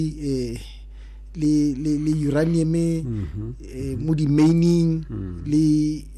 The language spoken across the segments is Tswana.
eh, le le le uranium mhm. eh, mo di mining mm. le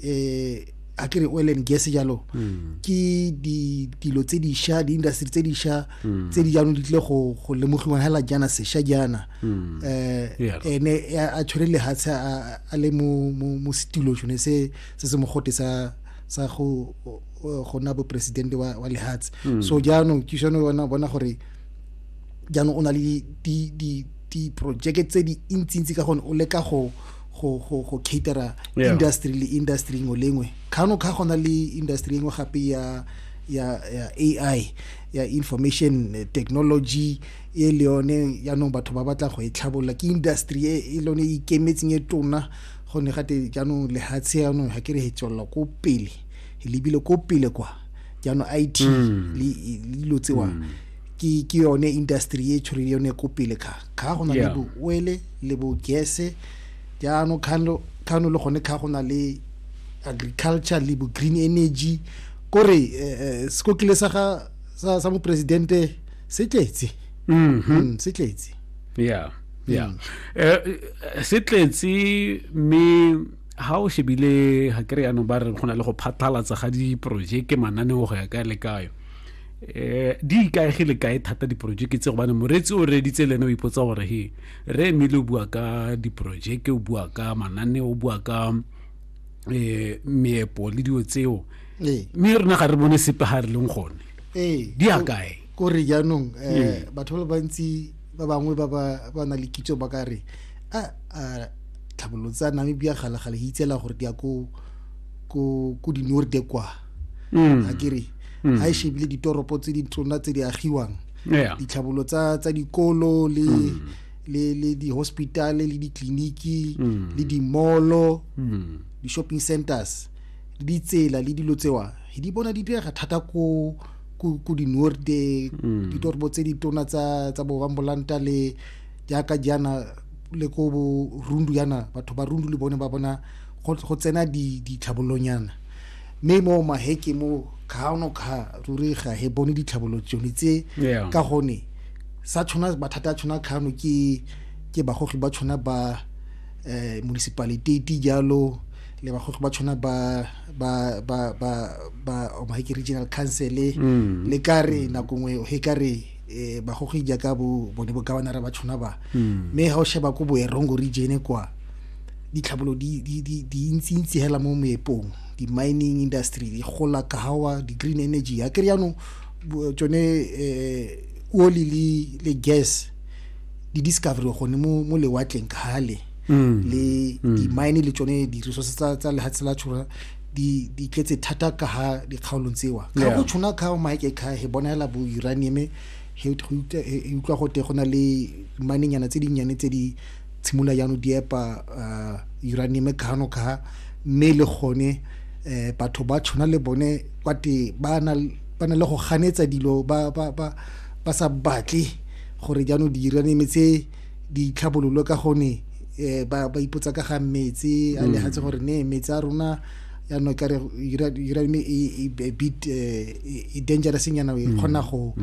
eh a kere oil and gas jalo mm. ke di dilo tse di sha di industry tse di sha mm. tse di jaanong di tle go go lemogiwa hela jana se sha jana eh ene a tshwere le ha a le mo mo studio jone se se se mogote sa sa go go na bo president wa wa lehatshe so jaanong ke shone bona bona gore jaanong o na le diprojeke tse di ntsi-ntsi ka gone o leka go go go go catera yeah. industry le industry ngwe le ngwe kgano kga gona le industry engwe gape ya ya ya AI ya information eh, technology e le yone jaanong batho ba batla go e tlhabolola ke industry e, e lone e ikemetseng e tona gonne gate jaanong lehatshe jaanong ga ke re e tswelela ko pele e lebile ko pele kwa jaanong it mm. le dilo tsewa mm. ke ke yone industry e tshwere yone ko pele kha kha go na le bo oele le bo gese jaano khano khano le gone kha go na le agriculture le bo green energy kore eh, eh, sekokile sa ga sa, sa mopresidente se tletse mm -hmm. mm, se tletse yeah yeah mm. eh, eh, se tletse me ha o shebile ha kere ya no ba re gona le go phathalatsa ga di project mananeo go ya ka le kayo eh di ikaegile kae thata diporojeke tse gobane moreetsi o reeditse le ene o ipotsa gore he re emile o bua ka diporojeke o bua ka mananeo o bua ka um meepo le dilo tseo ee. mme rona ga re bone sepe ga re leng gone ee. di ya kae ko re jaanong um ee. batho ba le bantsi ba bangwe ba ba na le kitso ba ka re a tlhabololo tsa namibia galagale e itsela gore di ya ko dinorde kwa mm. a kere mm. ga e shebile ditoropo tse di tsona tse di agiwang yeah. ditlhabolo tsa, tsa dikolo le mm. le le di-hospitale le ditleliniki mm. le dimolo mm. di-shopping centers le ditsela le dilo tsewa di bona di direga thata ko ku ku di norde mm. di torbo tse di tona tsa tsa bo bambolanta le jaaka jana le ko bo rundu yana batho ba rundu le bone ba bona go tsena di di tlhabolonyana mme mo maheke mo kgaano kga ruri ga he bone ditlhabolo tsone tse ka gone sa tshwana mathata a tshwana kgaano ke ke bagogi ba tshwana ba eh municipaliteti jalo le bagogi ba tshwana ba ba ba ba ba omaheke regional council mm. le ka re nako nngwe he ka re eh bagogi jaaka bo bone bo governor ba tshwana ba hmm. mme ha o sheba ko boerongo region kwa ditlhabolo di di di di ntsi ntsi hela mo moepong di mining industry di gola kahawa di green energy ya ke riano tsone eh oli le le gas di discovery gone mo mo lewatleng kgale hmm. le hmm. di mine le tsone di resources tsa tsa lehatsela tshura di di tletse thata ka ha dikgaolong tseo ga go tshwana ka o maike ka he bonela bo uranium he utlwa go te go na le manenyana tse dinnyane tse di tshimula yano di epa uh, uranium ka hano ka mme le gone eh batho ba tshwana le bone kwa te ba na ba na le go ganetsa dilo ba ba ba ba sa batle gore jaanong di uranium tse ditlhabololo ka gone um ba ipotsa ka ga metse a legatse gore ne metse a rona yaanong ka re uranium e bit e dangerous nyana e kgona go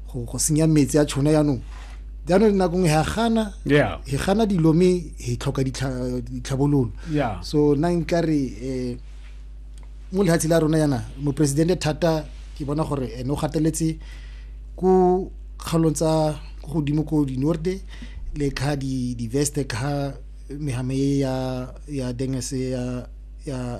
go senya metse a tshona yaanong jaanong nako nngwe ga gana e gana dilo mme e tlhoka ditlhabololo so nna nkare um mo lehatshe la rona yana moporesidente thata ke bona gore ene o gateletse ko kgaolong tsa ko godimo ko dinorde le kha di-veste kha mehame ya ya dengese ya ya